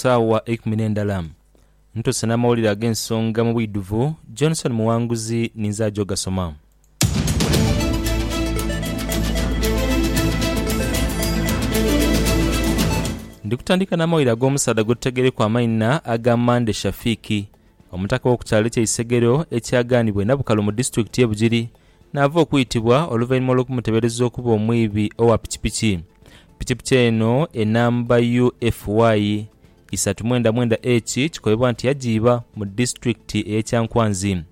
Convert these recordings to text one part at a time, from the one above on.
Saawa eikumi n'endala, ntuse n'amawulire ag'ensonga mu bwidhuvu. Johnson Muwanguzi ninze aja ogasoma. Ndi kutandika n'amawulire ag'omusaadha gwe tutegereku amaina aga Mande Shafiki, omutaka w'oku kyalo eky'e Isegero ekyagaanibwa e Nabukalu mu disitulikiti y'e Bugiri Naava okwitibwa oluvainhuma olw'okumutebereza okuba omwibi owa pikipiki. Pikipiki eno enamba UFY isatu mwenda mwenda H kikoibwa nti yajiiba mu disitulikiti eye Kyankwanzi.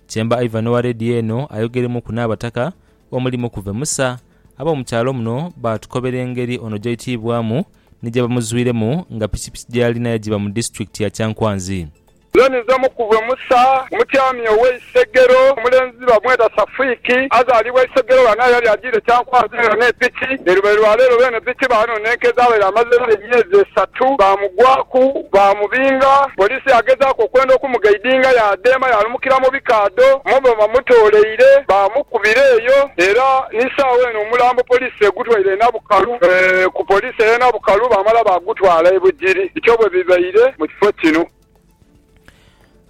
Chemba Ivan owa Radio eno ayogeremuku n'abataka omuli Mukuve Musa ab'omu kyalo muno baatukobera engeri ono gyaitiibwamu ni gyebamuzwiremu nga pikipiki gyeyalina yajiiba mu disitulikiti ya Kyankwanzi. Zoni z'omukuve Musa, omutyami ow'e Isegero. Omulenzi bamweta Safuiki, azaalibwa Isegero. Ghano yali ajiire kyankwanzi era ne piki. Ni lubali lwa leero beene piki baanonenka edhabaire amazeegho emyezi esatu. Baamugwaku, baamubinga. Poliisi yaagezaaku okwenda okumugaidinga yaadheema yaalumukira mu bikaadho omwo mwe bamutooleire. Baamukubira eyo era ni saagho eno omulambo poliisi egutwaire e Bukalu ku poliisi ey'e Nabukalu baamala baagutwala e Bugiri bityo bwe bibaire mu kifo kino.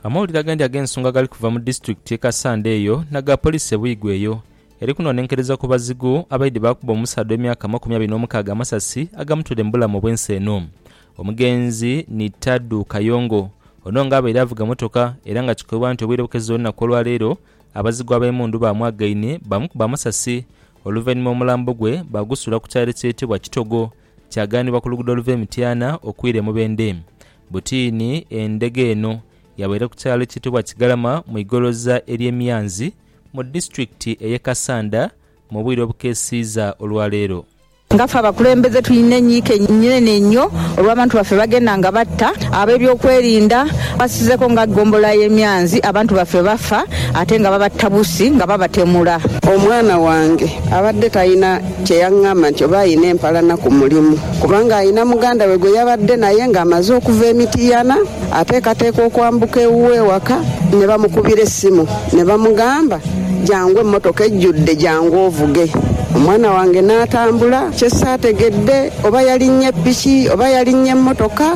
Amawulire agandi ag'ensonga gali kuva mu disitulikiti y'e Kassanda eyo n'aga poliisi e Buigwe eyo eri kunonenkereza ku bazigu abaidhi baakuba omusaadha ow'emyaka amakumi abiri n'omukaaga amasasi agamutwire mu bulamu obw'ensi eno. Omugenzi ni Tadu Kayongo. Ono nga abaire avuga motoka era nga kikoibwa nti obwire bukeziire olunaku olwaleero abazigu ab'emundu baamwagaine baamukuba amasasi Oluvainhuma omulambo gwe baagusuula ku kyalo ekyetebwa Kitogo, kyaghanibwa ku luguudo oluva e Mityana okwira e Mubende. Butiini endhege eno yabaire ku kyalo ekyetebwa Kigalama mu igoloza ery'e Myanzi mu disitulikiti ey'e Kassanda mu bwire obukeesiiza olwaleero. Nga ffe abakulembeze tulina enyiike enene einho olw'abantu baffe bagenda nga batta, ab'ebyokwerinda basizeeko nga ggombolola y'e Myanzi abantu baffe bafa ate nga baba tabusi nga babatemula. Omwana wange abadde talina kye yang'amba nti oba alina empalana ku mulimu kubanga alina muganda we gwe yabadde naye ng'amaze okuva e Mityana ateekateeka okwambuka ewuwe ewaka ne bamukubira essimu ne bamugamba, Jangu emmotoka ejjudde jangu ovuge. Omwana wange n'atambula kye saategedde oba yalinnye piki oba yalinnye mmotoka.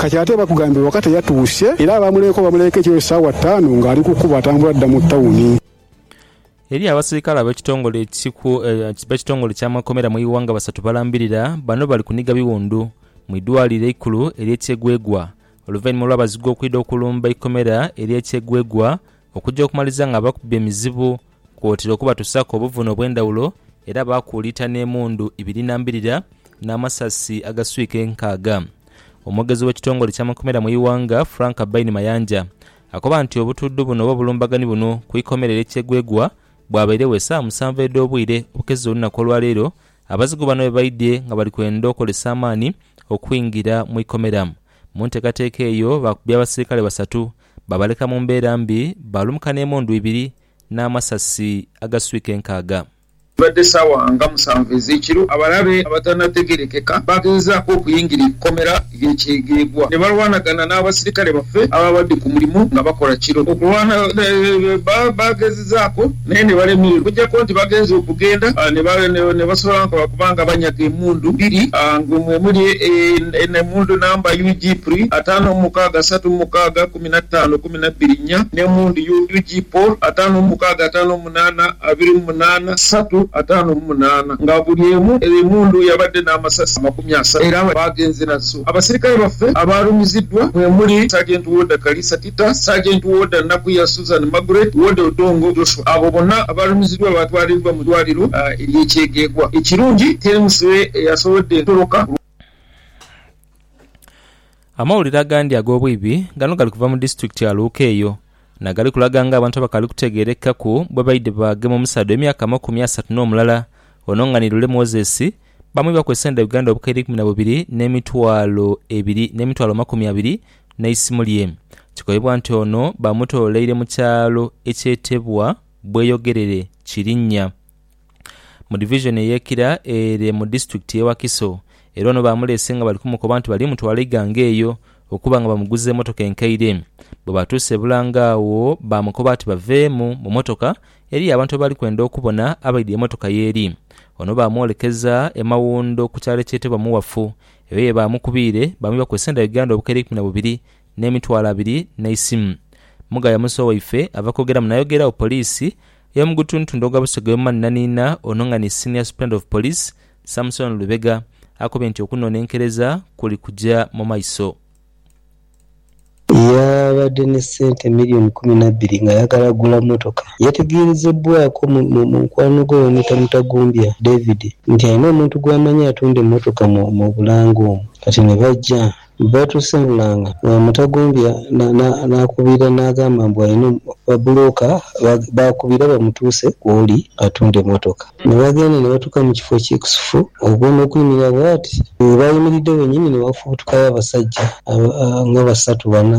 Kati ate bakugambye waka teyatuuse era abaamuleeka obamuleeka ekiro saawa ttaanu ng'ali ku kkubo atambula adda mu tawuni. Eriyo abaserikale abekitongole ekitongole kyamakomera mu iwanga basatu balambirira bano bali kuniga biwundu mu idwaliro eikulu erye Kyegwegwa oluvanyuma olwabazigu okwidha okulumba eikomera erye Kyegwegwa okugya okumaliza nga bakubba emizibu Kwotaire okubatusaaku obuvune obw'endhawulo era baakuuliita n'emundu ibiri na mbirira n'amasasi agaswika enkaaga. Omwogezi w'ekitongole eky'amakomera mu ighanga, Frank Baine Mayanja akoba nti obutudhu buno oba obulumbaganhi buno ku ikomera erye Kyegwegwa bwabairegho esaawa musanvu edh'obwire obukeseza olunaku olwaleero abazigu bano bwebaidhye nga bali kwenda okozesa amaani okwingira mu ikomera. Mu nteekateeka eyo baakubye abasirikale basatu babaleka mu mbeera mbi baalumuka n'emundu ibiri n'amasasi agaswika enkaaga. Bibadde saawa nga musanvu ez'ekiro, abalabe abatanategerekeka baagezezaako okuyingira eikomera ly'e Kyegegwa ne balwanagana n'abasirikale baffe abaabadde ku mulimu nga bakola kiro. Okulwana baagezezaako naye ne balemererwa okuggyako nti bagenze okugenda ne basobola okuba nga banyaga emundu bbiri nga mwemuli emundu namba UG PRI ataano mu mukaaga asatu mu mukaaga, kumi na taano, kumi na bbiri nnya, ne mu ndhi UG Paul, ataano mu mukaaga, ataano mu munaana, abiri mu munaana, satu, ataano mu munaana, nga buli emu eri mu ndhu yabadde n'amasasi amakumi asatu era nga baagenze nazo. Abasirikale baffe abaalumiziddwa mwe muli, Sergeant Warder Kalisa Tita, Sergeant Warder Nakuya Susan Margaret, Warder Odongo Joshua. Abo bonna abaalumiziddwa baatwaliddwa mu ddwaaliro ery'e Kyegegwa. Ekirungi teri musibe eyasobodde kutoloka. Amawulire agandi ag'obwibi gano gali kuva mu disiturikiti ya Luuka eyo, na gali kulaga nga abantu abakaali kutegeerekaku bwe baidhi baagema omusaadha ow'emyaka amakumi asatu n'omulala ono nga ni Lule Moses baamwibaku esente dha Uganda obukaire eikumi na bubiri n'emitwalo ebiri n'emitwalo amakumi abiri n'eisimu lye. Kikoibwa nti ono baamutololeire mu kyalo ekyetebwa Bweyogerere Kirinnya. mu divizoni ey'e Kira ere mu disitulikiti y'e Wakiso era ono baamuleese nga bali kumukoba nti bali mutwala Iganga eyo okuba nga bamuguza emotoka enkaire. Bwe baatuuse e Bulange agho baamukoba ati baveemu mu motoka eriyo abantu abaali kwenda okubona abaidhi emotoka y'eri. Ono baamwolekeza e Mawundo ku kyalo ekyetebwa Muwafu eyo ye baamukubiire baamwibaku esenda Uganda obukaire eikumi na bubiri n'emitwalo abiri n'eisimu. Mugaya Musa owaife ava kwogera muno ayogeeragho poliisi ey'omu gutuntundu ogwa Busega y'omumanhinanhinha ono nga ni Senior Superintendent of Police, Samson Lubega akobye nti okunonenkereza kuli kuja mu maiso. Yaabadde ne ssente million kumi na bbiri ng'ayagala gula mmotoka. Yategeerezebbwaako mu mukwano gwe bamwita Mutagumbya David nti alina omuntu gw'amanyi atunda emmotoka mu Bulange omwo kati ne baja Bwetuseemulanga nga Mutagumbya n'akubiira n'agamba mbu alina babbulooka b'akubiira bamutuuse w'oli atunde mmotoka. Ne bagenda ne batuuka mu kifo ekikusifu okwo n'okuyimirira bw'ati. Bwe baayimiridde wennyini ne wafubutukayo abasajja nga basatu bana.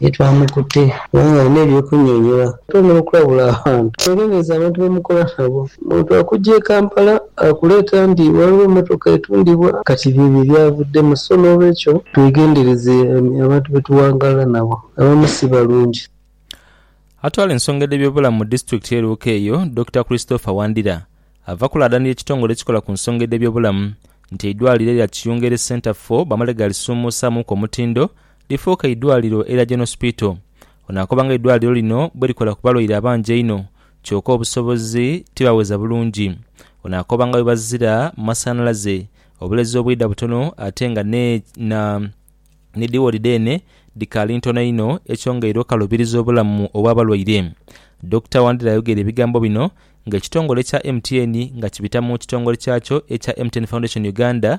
Ye twamukute kubanga alina eby'okunyonyola ate n'okulabula abantu. Teebereza abantu be mukola nabo. Omuntu akuggya e Kampala akuleeta nti ghaligho emmotoka etundibwa. Kati by'ebyo ebyavuddemu. So n'olwekyo twegendereze abantu be tuwangaala nabo. Abamu si balungi. Atwala ensonga edh'ebyobulamu mu disitulikiti ye Luuka eyo, Dokita Christopher Wandira, ava kulaadanira ekitongole ekikola ku nsonga edh'ebyobulamu nti eidwaliro erya Kiyunga eri Centre for bamale ghalisuumuusaamuku omutindo lifuuke eidwaliro erya Gen. Hospital. Ono akoba nga eidwaliro lino bwerikola ku balwaire abangi einho kyoka obusobozi tibaweza bulungi. Ono akoba nga bwebazira mu masanhalaze, obulezi obwidha butono ate nga ni dhi woodi dheene dhikaali ntono inho ekyongeire okalubiriza obulamu obwa balwaire. Dokita Wandira ayogeire ebigambo bino nga ekitongole ekya MTN nga kibita mu kitongole kyakyo ekya MTN Foundation Uganda